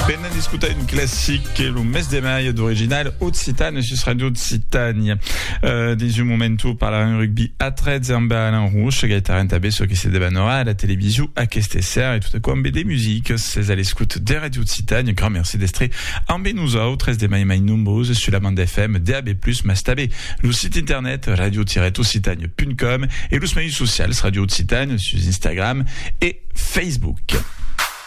Venen d'escutar un classic que lo mes de mai d'original occitan sus Radio Occitània. Uh, dins un moment ho parlarem rugby a 13 amb Alain Rouge, gaitaran també ce que se debanora a la television aquesta serra e tot aquò amb de musique. C'est à l'escoute de Radio Occitània. Grand merci d'estre amb nosaltres de mai mai nombreuses sur la bande FM, DAB+, mas també lo site internet radio-occitània.com e los mèus socials Radio Occitània sus Instagram e Facebook.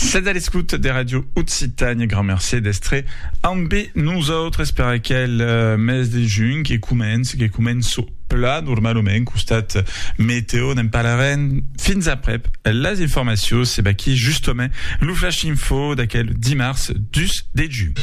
Sètz a l'escouta de Ràdio Occitània. Grand mercé d'èstre ambe nosautres per aquel mes de junh que comença, que comença plan normalament. Costat meteo ne'n parlarem fins aprèp las informacions. Se baquí justament lo flash info d'aquel dimars 2 de junh.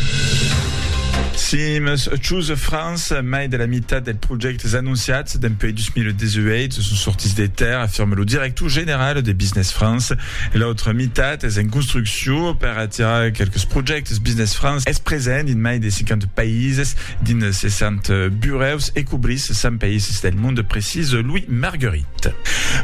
Sims Choose France, mai de la mitat dels projèctes anonciats dempuèi 2018 son sortits de tèrra, afirma lo director general de Business France, E l'autra mitat es en construcciu per atirar quelques projèctes Business France es present dins mai de 50 païses dins 60 burèus e cobrís 100 païses del monde, precís Louis Marguerit.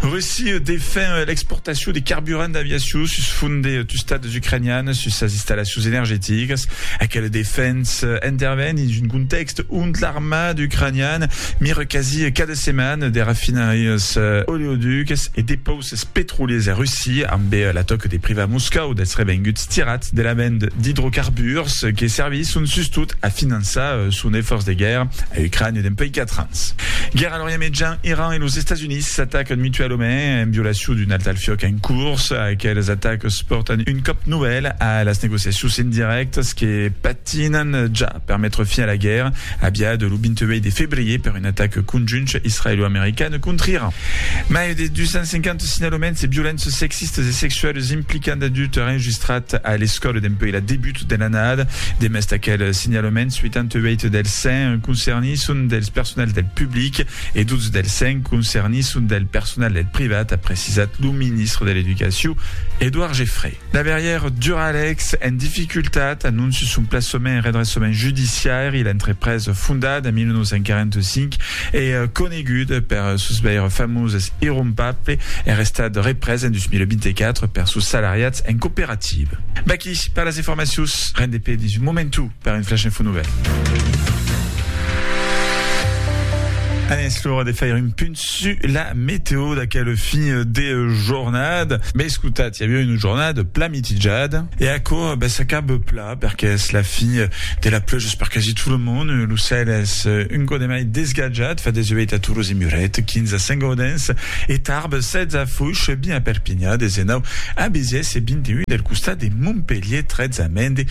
Russia defen l'exportacion de carburant d'aviacion sus font de tustats ucranians sus sas installacions energeticas. Aquela defensa interven dins un contèxt ont l'armada ucraniana mira quasi cada setmana de rafinarias oleoducas e depauses. Ses petroliers a Russia, ambe la tòca de privar Moscòu dels revenguts tirats de la vend d'idrocarburs que servisson sustot a finançar son efòrç de guèrra a Ucrània dempuèi 4 ans. Guèrra a l'Orient Mejan, Iran e los Estats Units s'atacan mutualament en violacion d'un alt al fiòc en curs. Aqueles atacs pòrtan un còp novèl a las negociacions indirèctas que Tinan ja per metre fin a la guèrra, aviada lo 28 de febrier per un atac conjunt israelo-american contra Iran. Mai de 250 signalaments de violences sexistas e sexualas implicant adultes enregistrats a l'escòla dempuèi la debut de l'annada. Demest aquel signalaments, 88 dels 100 concernits son dels personals del public e 12 dels 100 concernits son del personal del privat, a precisat lo ministre de l'Educacion, Edouard Geffray. Laberièr Duralex en dificultat, anonci son plaçament en redressament judiciari, l'entrepresa fondada en 1945 e coneguda per sos veire famoses irrompable er estat represa en 2024 per sos salariats en cooperativa. Vaquí per las informacions, rendepé dins un momentu. Per un flash info nouvèl. An es l'ora de faire un punt su la meteo d'aquel fin de jornada. Be escotat, i aviá una jornada plan mitijada e aquò be s'acaba pla perque es la fin de la plujas per quasi tot lo mond. Lo cèl es un cò de mai desgatjat, fa 18 a Tolòs e Muret, 15 a Saint-Gaudens e Tarbes, 16 a Foix, 20 a Perpinha, 19 a Béziers e 21 del costat de Montpelhier, 13 a Mende,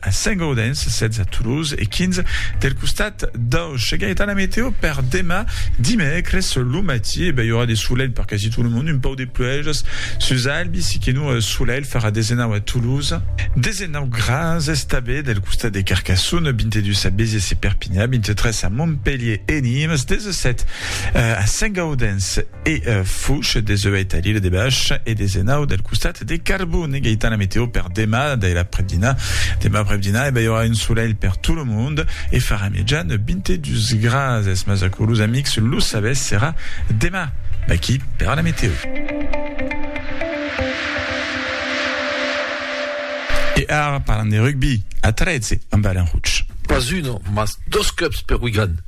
A Saint-Gaudens, 16 a Toulouse e 15 del costat d'Auch. Ega etana meteo per demà dimècres lo matí, e ben i aurà de solelh per quasi tot lo mond, un pauc de pluèjas sus Albi, si que non solelh, farà 19 a Toulouse, 19 grads estabé del costat de Carcassonne, 22 a Béziers e Perpignan, 23 a Montpelhier e Nimes, 17 a Saint-Gaudens e Fouche, 18 a l'Ile de Bach e 19 del costat De carbon e Gaëtan, la meteo per demà dai l'aprèp-dinà. Demà aprèp-dinà e balhorà un solelh per tot lo mond e farà mejan 22 grads. Es mas aquò los amics lo sabètz serà demà. Vaqui per la meteo. E ara parlam de rugbi a 13 amb Alain Rouch. Pas un, mas dos clubs per Wigan.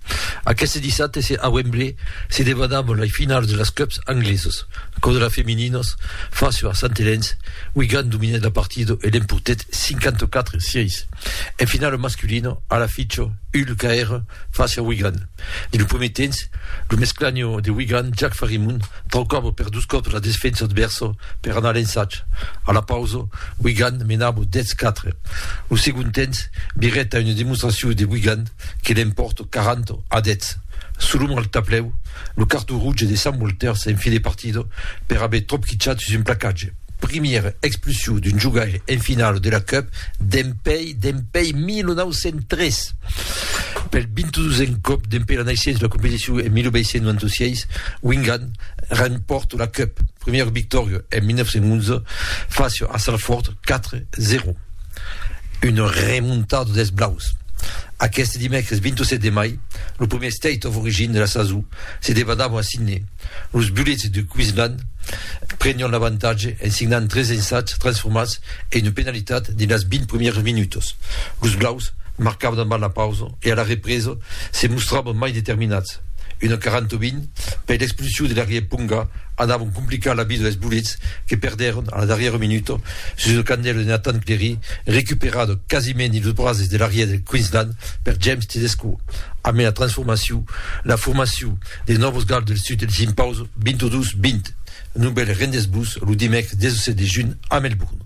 Aqueste dissabte se a Wembley se debanabon lei finals de las cups anglesos. Aquò de las femininos face a Sant Helens, Wigan dominèt la partida e l'empotèt 54 sièis. En finala masculino, a la ficho, Hull caère face a Wigan. Dins lo prumèr temps, lo mesclanho de Wigan, Jack Farimund, traucava per dos còps la desfensa advèrsa per anar a l'ensatge. A la pausa, Wigan menava 10-4. Lo segond temps virèt a una demonstracion de Wigan. que l'en pòrto quaranta a dètz sul ombre al tablèu, lo carton rouge de Sant Walter s'en fi de partida per aver tropquichat sus un placatge. Primièra expulsiu d'un jogaire en finala de la Cup dempèi dempèi 1903! Pel 22n còp dempèi la naissença de la competicion en 1896, Wingan rempòrta la Cup, primièra victòria en 1911 fàcia a Salford 4, 0. Una remontada dels blaus. Aqueste dimècres 27 de mai, lo primièr State of Origin de la sason se debadava a Sydney. Los Bullets de Queensland prenián l'avantatge en signant tres ensats transformats e una penalitat dins las 20 primièras minutas. Los blaus marcavan abans la pausa e a la represa se mostravan mai determinats. Una 40 a 20 per l'expulsion de l'arrièr Ponga anavan complicar la vida dels Bullets que perdèron a la darrièra minuta Sus lo candèl de Nathan Clery, recuperat quasiment dins los brases de l'Arrièr del Queensland per James Tedesco, ambe la transformacion, la formacion, de Nòvos Gals del Sud del Simpauso 22-20. Novèl rendesbus lo dimècres 17 de junh a Melbourne.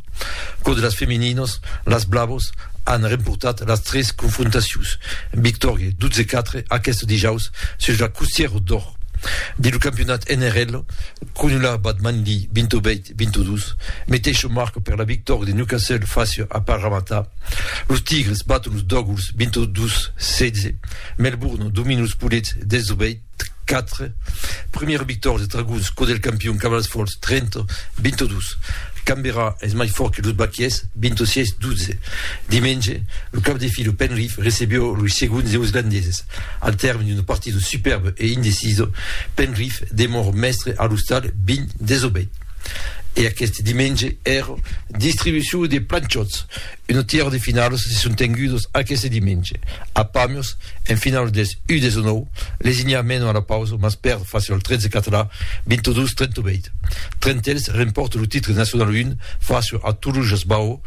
Cò de las femininas, las Blavas an remportat las tres confrontacions, victòria 12-4 aqueste dijaus sus la Costièra d'Or. Dins lo campionat NRL, Cronulat bat Manly 28-22, meteisho marca per la victòria de Newcastle fàcia a Parramatta. Los Tigres baton los Dogwls 22-16, Melbourne domina los Poulets 18-4, primièra victòria dels Dragons cò del campion Cavalls Fòrts 30-22. Canberra es mai fòrt que los Bakies 26-12. Dimenge, lo cap de fila Penrith recebió los segons Neoslandeses. Al tèrme d'una partida superba e indecisa, Penrith demòra mèstre a l'ostal Byn Desobeit. E aqueste dimenge èra distribucion de planchòts. Una tièra de finalas se son tengudas aqueste dimenge. A Pamiers, en finala deth U19, Lesinha mena a la pausa mas pèrd fàcia al 13 català, 22-38. Trentèls remporta lo titre nacional 1 fàcia a Toluges Baó,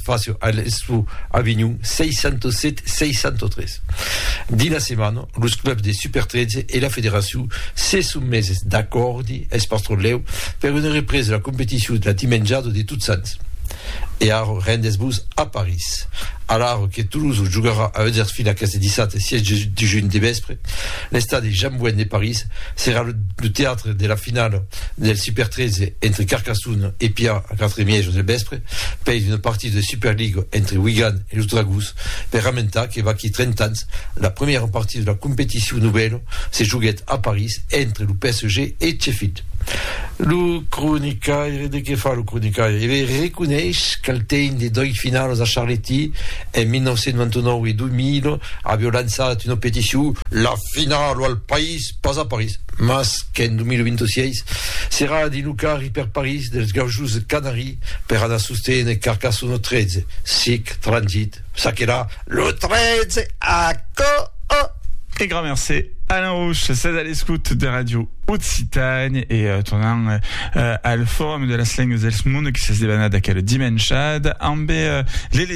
Facio a l'Expo Avinhon 607 603. Dins la setmana, los clubs de Super 13 e la federacion se son meses d'acòrdi eth pastrolèu per una represa de la competicion la dimenjada de Tots Sants. E ara rendes-vos a París. Alara que Tolosa jogarà a Huddersfield aqueste dissabte 6 de junh de vèspre, l'estadi Jean Bouin de París serà lo teatre de la finala del Super 13 entre Carcassona e Pià a 4 e mièja del vèspre. pels una partida de Superliga entre Wigan e los Dragons per ramentar que vaquí 30 ans la primièra partida de la competicion novèla se joguèt a París entre lo PSG e Sheffield. Lo cronicaire de Que fa lo cronicaire? E be, reconeis qu'al temps de dois finalas a Charletti en 1999 e 2000 avió lançat una peticion La finala al País Pas a París, mas qu'en 2026 serà a dilucar i per París dels gaujos de Canari per anar sostenent Carcassonne 13, sic, transit, ça que la, lo 13 a Coo! E grand mercé, Alain Rouch, sètz a l'escout de Radio Occitània e tornam al Forum de las lengas dels mondes que s'es debanat aquela dimenshada ambe l'Elena.